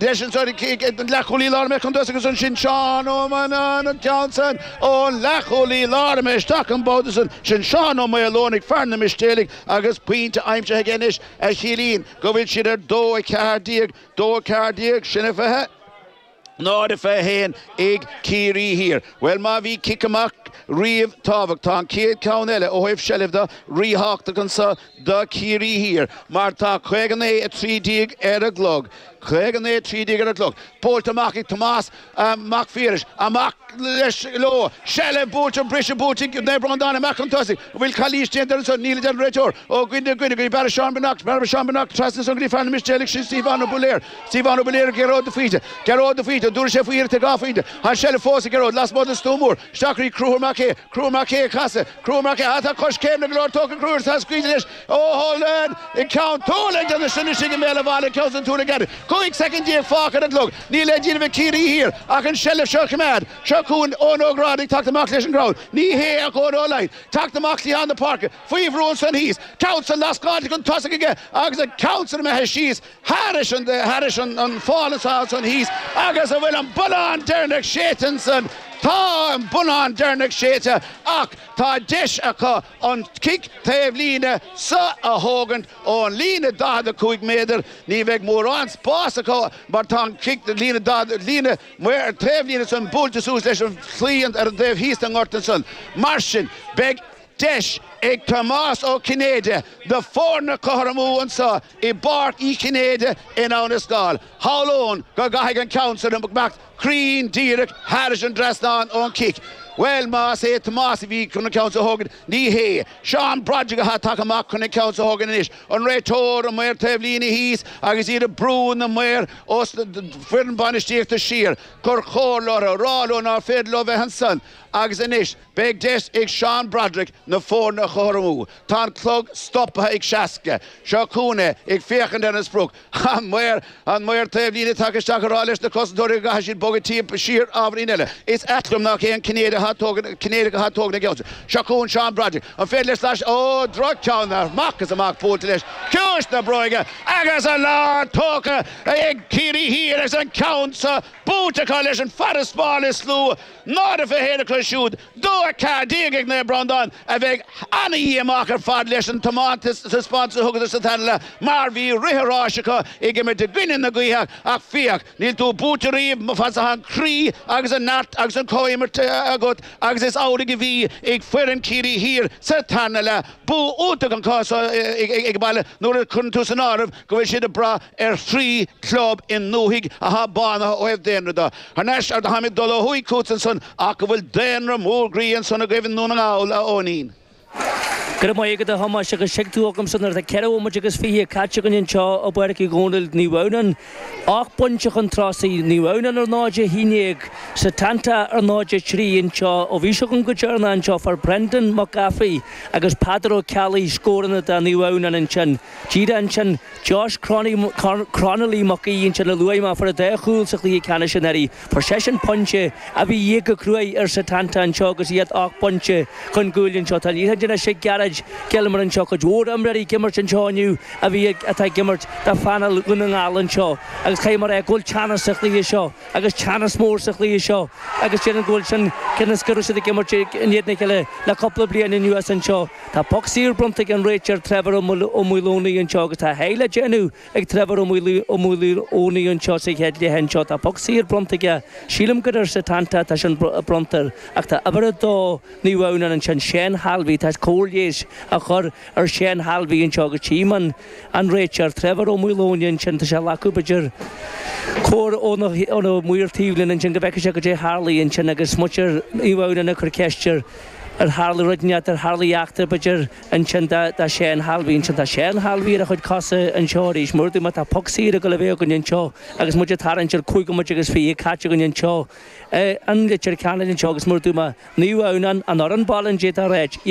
Leis an sárú cíoch ag an leathchúlaí láir imithe chun tosaigh agus ansin Seán Ó Mainnín an ceann san ón leathchúlaí láir imithe isteach an babhta san. Sin Seán Ó Maoláin ag fear na Mistéalaigh agus pointe aimsithe aige anois a chiallaíonn go bhfuil siad ar dó a ceathair déag, dó a ceathair déag, sin a fiche? náid a fiche a haon ag Ciarraí Thiar. Bhuel má bhí cic amach riamh tábhachtach tá an chéad ceann eile ó thaobh seilbhe de ríthábhachtach anso do Chiarraí Thiar mar tá caoga naoi a trí déag ar an gclog, caoga naoi a trí déag ar an gclog, buailte amach ag Tomás Mac Phiarais. Amach leis leo. Seilbh buaite, briseadh buaite ag Naomh Breandán amach chun tosaigh, an bhfuil calaois déanta ar an son, níl a deir an réiteoir, ó dhuine go duine, go dtí Barra Seán Binoc, Barra Seán Binoc, trasna san go dtí fear na Mistéalaigh sin Stiofán Ó Budhlaeir, Stiofán Ó Budhlaeir, Gearóid de Faoite, Gearóid de Faoite, an dtabharfaidh sé faoi iarracht ag dhá phointe, tá an tseilbh fós ag Gearóid lasmuigh den stua mór, Isteach go dtí Conchúr Mac Aodha, Conchúr Mac Aodha casadh Conchúr Mac Aodha tá coiscéimeanna go leor tógtha ag Conchúr atá scaoilte leis ó Holden i gCeann Tulaigh ag déanamh sine istigh i mbéal an bhaile ag ceann an Tulaigh Aird, 15 soicind fágtha ar an gclog, níl le déanamh ag Ciarraí Thiar ach an seilbh seo a choimeád. Seo chugainn Eoin Ó Gráda ag teacht amach leis an gcrowd, ní hé ach Eoin Ó Laighin, teacht amach cliathán na páirce, faoi bhrú ansan thíos, ceann san lascáilte chun tosaigh aige agus an ceann san imithe síos Thairis an fál atá ansan thíos agus an bhfuil an bunnán deireanach séidte ansan, tá an bunnán deireanach séidte ach tá deis acu an cic taobh líne so a thógaint ón líne 45 méadar. Ní bheidh mórán spás acu mar tá an cic líne taobh líne san buailte suas leis an chlaí ar an dtaobh thíos den ngort ansan. Mar sin, beidh. Deis ag Tomás Ó Cinnéide na foirne a chothromú anso i bPáirc Uí Chinnéide in Abhainn an Scáil. Shamhlóinn go gcaithfidh an ceann san imeacht cruinn díreach thairis an dtrasnán ón gcic. Bhuel, más é Tomás a bhí chun an ceann seo a thógaint, ní hé. Seán Broderick atá tagtha amach chun an ceann seo a thógaint anois. An réiteoir, an maor taobh líne thíos agus iad ag brú na maor is na foireann bainistíochta siar. Ag cur comhairle orthu, ag rá leo nár féidir leo bheith ansan agus anois. Beidh deis ag Seán Broderick na foirne a chothromú. Tá an clog stoptha ag seasca. Seo chugainn é, ag féachaint ar an sprioc. An maor! An maor taobhlíne tagtha isteach ag rá leis na cosantóirí go gcaithfidh siad bogadh timpeall, siar, ábhairín eile. Is ait liom nach é an Cinnéideach atá ag tógaint na geallta. Seo chugainn Seán Broderick. An féidir leis slais a. Ó! Droch-cheann amach is amach buailte leis. Ciumhais na bróige agus an lá tógtha ag Ciarraí Thiar agus an ceann seo buaite acu leis an farasbarr is lú. Náid a fiche a haon acu siúd, dó 14 ag Naomh Breandán, a bheidh ana-dhíomách ar fad leis an taispeántas a thugadar sa tarna leath mar bhí rith an ráis acu ag imirt i gcoinne na gaoithe ach féach, níl tú buailte riamh má tá an croí agus an neart agus an comhimirt agat agus is amhlaidh a bhí ag foireann Chiarraí Thiar sa tarna leath. Bua iontach an cás ag baile nuair a chuireann tú san áireamh go bhfuil siad ag brath ar thrí club i ndúthaigh athá bánaithe ó thaobh daonra do. Thar n-ais ar do tháimid dul ó thuaidh chút ansan, ach go bhfuil daonra mór groí ansan agaibh i nDún na nGall, a Eoinín? Go raibh maith agat, a Thomáis, agus seo tú chugamsa nuair atá ceithre bhomaite agus fiche caite againn anseo i bPáirc Uí Dhónaill, Naomh Adhamhnán, ocht bpointe chun tosaigh, Naomh Adhamhnán ar 0-11, Setanta ar 0-3 anseo ó bhí sibh againn go deireanach anseo. Fuair Brendan Mac Gafraidh agus Peadar Ó Ceallaigh scóranna do Naomh Adhamhnán ansin. Díreach ansin. Josh Cronolly Mac Aoidh ansin a luaigh mé, fuair an dá chúl sa chluiche ceannais anuraidh. Fuair seisean pointe a bhí de dhíth go cruaidh ar Setanta anseo agus iad ocht bpointe chun gcúil anseo. Tá an liathróid anois ag Gerard Gilmore anseo cuid mhór imreoirí ag imirt anseo inniu a bhí ag, atá ag imirt do phainéal Dhún na nGall anseo agus caithfidh mé a rá go bhfuil teannas sa chluiche seo agus teannas mór sa chluiche seo agus déarfainn go bhfuil sin, cionn is go raibh siad ag imirt in éadan a chéile le cúpla bliain anuas anseo. Tá poc saor bronnta ag an réiteoir ar Trevor Ó Maoileoin anseo agus tá a sháith le déanamh ag Trevor Ó Maoileoin anseo sa chéad leath anseo. Tá poc saor bronnta aige. Sílim gur ar Setanta atá sin bronnta air ach tá uimhir 2, Naomh Adhamhnáin, ansin, Shane Halvey. Tá cóir leighis á chur ar Shane Halvey anseo agus tchím an réiteoir, Trevor Ó Maoileoin, ansin, tá sé ag glacadh, b'fhéidir, comhairle ó na maoir taobhlíne ansin go bhfeicfidh sé cad é a tharlaigh ansin agus muintir Naomh Adhamhnáin ag cur ceiste air. Ar tharla rud inteacht, ar tharla eachtra, b'fhéidir, ansin, do Shane Halvey ansin, tá Shane Halvey ar a chuid cosa anseo arís, mar a dúirt mé tá poc saor ag gabháil a bheith againn anseo agus muid ag tarraingt ar chúig bhomaite agus fiche caite againn anseo, i Leitir Ceanainn anseo agus mar a dúirt mé, Naomh Adhamhnán, an fhoireann baile an dé tá reid, iad.